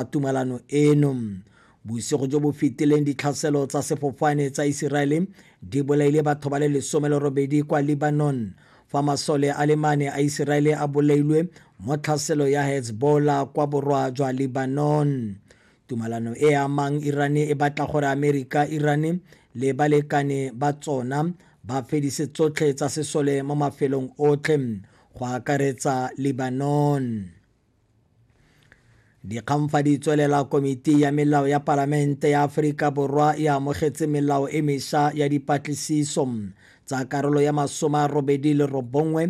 ga tumalano eno bosigo jo bo fetileng ditlhaselo tsa sefofane tsa iseraele di bolaile batho ba le lesome le robedi kwa lebanon fa masole a le mane a iseraele a bolailwe mo tlhaselo ya hezbollah kwa borwa jwa lebanon tumalano e amang irane e batla gore amerika irane le balekane ba tsona ba fedise tsotlhe tsa sesole mo mafelong otlhe go akaretsa lebanon Dikgang fa di tswelela Komiti ya Melao ya Palamente ya Aforika Borwa e amogetse melao e mesha ya dipatlisiso tsa karolo ya masoma a robedi le robongwe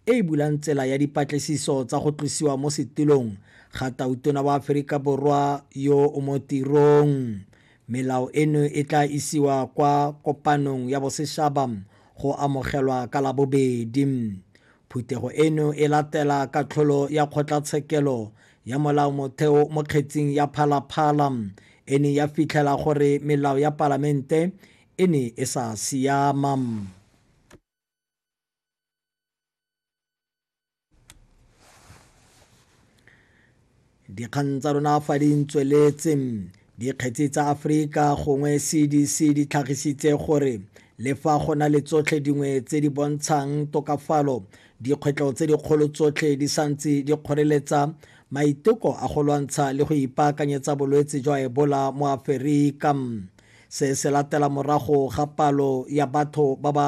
e e bulang tsela ya dipatlisiso tsa go tlosiwa mo setulong ga tautona wa Aforika Borwa yo o mo tirong. Melao eno e tla isiwa kwa kopanong ya boseshaba go amogelwa ka labobedi. Phuthego eno e latela katlholo ya kgotlatshekelo ya molaomotheo mo kgetsing ya Phalaphala e ne ya fitlhela gore melao ya palamente e ne e sa siama. dikgang tsa rona fa di ntsweletse dikgetsi tsa aforika gongwe cdc di tlhagisitse gore le fa go na le tsotlhe dingwe tse di bontshang tokafalo dikgwetlho tse dikgolo tsotlhe di santse di kgoreletsa maiteko a go lwantsha le go ipaakanyetsa bolwetse jwa ebola mo aferika se se latela morago ga palo ya batho ba ba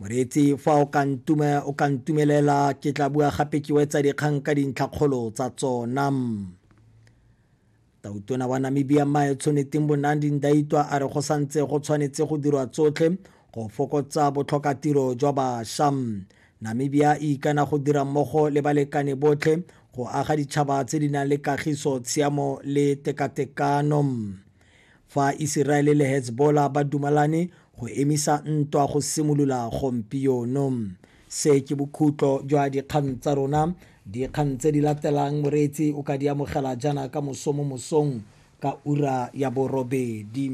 moreetsi fa o ka ntume o ka ntumelela ke tla bua gape ke wetsa dikgang ka dintlhakgolo tsa tsona tautona wa namibia mae tshwanetseng bonandi ndaitwa a re go santse go tshwanetse go dirwa tsotlhe go fokotsa botlhokatiro jwa bašwa namibia e ikana go dira mmogo le balekane botlhe go aga ditšhaba tse di nang le kagiso tshiamo le tekatekano Fa Iseraele le Hezbollah ba dumalane go emisa ntwa go simolola gompieno. Se ke bokhutlo jwa dikgang tsa rona. Dikgang tse di latelang moreetsi o ka di amogela jaana ka moso mo mosong ka ura ya borobedi.